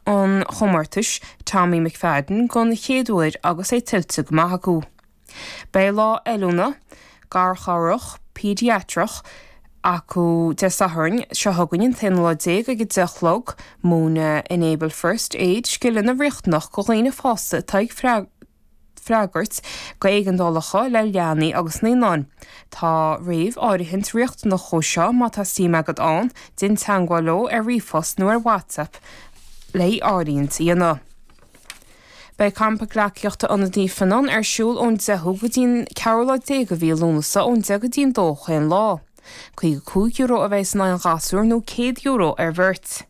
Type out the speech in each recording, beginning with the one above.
an chomórtais Tommy McFadden don chéad uair agus é tuillte go maith acu. Beidh lá oiliúna, garchabhrach, péidiatrach, acu Dé Sathairn seo chugainn, an t-aonú lá déag, ag a deich a chlog. Múinfidh Enable First Aid, scileanna riachtanach go dhaoine fásta atá ag. freagairt go éigeandálacha le leanaí agus naíonáin. Tá réamháirithint riachtanach dhó seo má tá suim agat ann, déan teangmháil leo ar ríomhphost nó ar WhatsApp le háirithint a dhéanamh. Beidh Campa Gleacaíochta Ionad Naomh Fionnán ar siúl ón 10ú go dtí'n 14 lá de mhí Lúnasa ón 10 go dtí'n 2 chaon lá. €55 a bhéas in aghaidh an ghasúir nó €100 ar bheirt.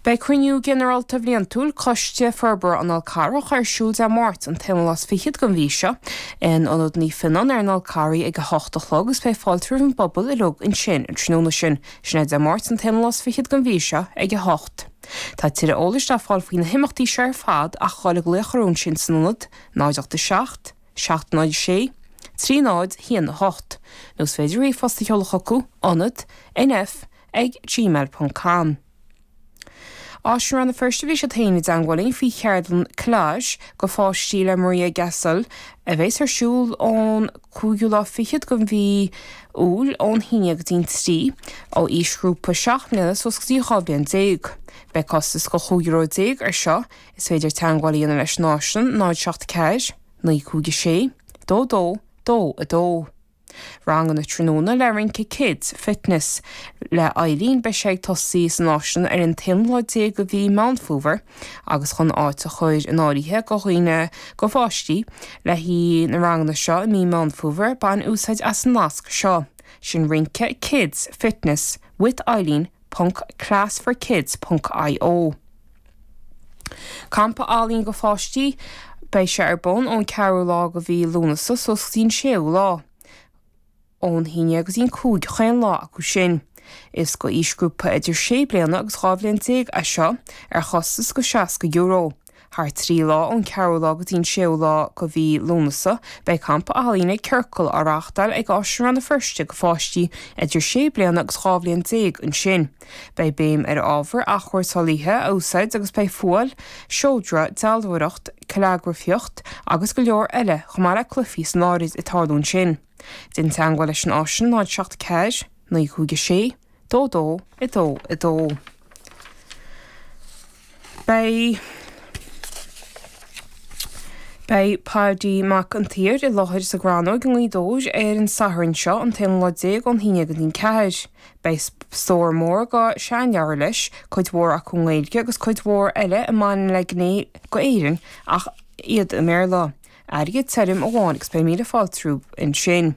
Beidh cruinniú ginearálta bhliantúil Coiste Forbartha an Fhál Carrach ar siúl Dé Máirt, an t-aonú lá is fichead den mhí seo, in Ionad Naomh Fionnán ar an Fhál Carraigh ag a hocht a chlog agus beidh fáilte roimh an bpobal uilig ansin an tráthnóna sin. Sin é Dé Máirt, an t-aonú lá is fichead den mhí seo, ag a hocht. Tá tuilleadh eolais le fáil faoi na himeachtaí seo ar fad ach a ghoil ag glaoch orthu ansin san ionad, 087 706 30 1 8, nó is féidir ríomhphost a sheoladh chucu, Ionad, NF, ag gmail ponc com. Áislann Rann na Feirste Bhí siad féin i dteangmháil linn faoi cheardlann Collage go pháistí le Maria Gasol a bhéas ar siúl ón cúigiú lá fichead den mhí Iúil ón haon go dtí'n trí ó aoisghrúpa seacht mbliana suas go dtí dhá bhliain déag. Beidh costas go chúig euro déag ar seo. Is féidir teangmháil a dhéanamh leis an Áislann 074 956 22 22. Ranganna tráthnóna le rince Kids Fitness le Eileen Beidh sé ag tosaí san Áislann ar an t-aonú lá déag de mhí Meán Fómhair agus chun áit a chur in áirithe go dhaoine go pháistí le haghaidh na ranganna seo i mí Meán Fómhair bain úsáid as an nasc seo sin rince Kids Fitness with Eileen ponc classforkids ponc io Campa ealaíon go pháistí Beidh sé ar bun ón ceathrú lá go mhí Lúnasa suas go dtí an séú lá ón haon go dtí'n cúig chaon lá acu sin. Is go aoisghrúpa idir sé bliana agus dhá bhliain déag é seo, ar chostas go €60. Thar trí lá, ón ceathrú lá go dtí an séú lá go mhí Lúnasa, beidh campa ealaíne Circle á reáchtáil ag Áislann Rann na Feirste go pháistí idir sé bliana agus dhá bhliain déag ansin. Beidh béim ar ábhair athchúrsáilithe a úsáid agus beidh fuáil, seodra, dealbhóireacht, callagrafaíocht agus go leor eile, chomh maith le cluifí san áirid ag tarlú ansin. Déan teagmháil leis an Áislann 074 956 dó dó i dó i dó. Beidh Beidh Paidí Mac an tSaoir i láthair sa Chrannóig i nGaoth Dobhair ar an Satharn seo an t-aonú lá déag ón haon go dtí an ceathair. Beidh stór mór de sheanleabhair leis, cuid mhór acu i nGaeilge agus cuid mhór eile a bhaineann le gné de Éirinn ach iad i mBéarla. Airgead tirim amháin agus beidh míle fáilte roimh ansin.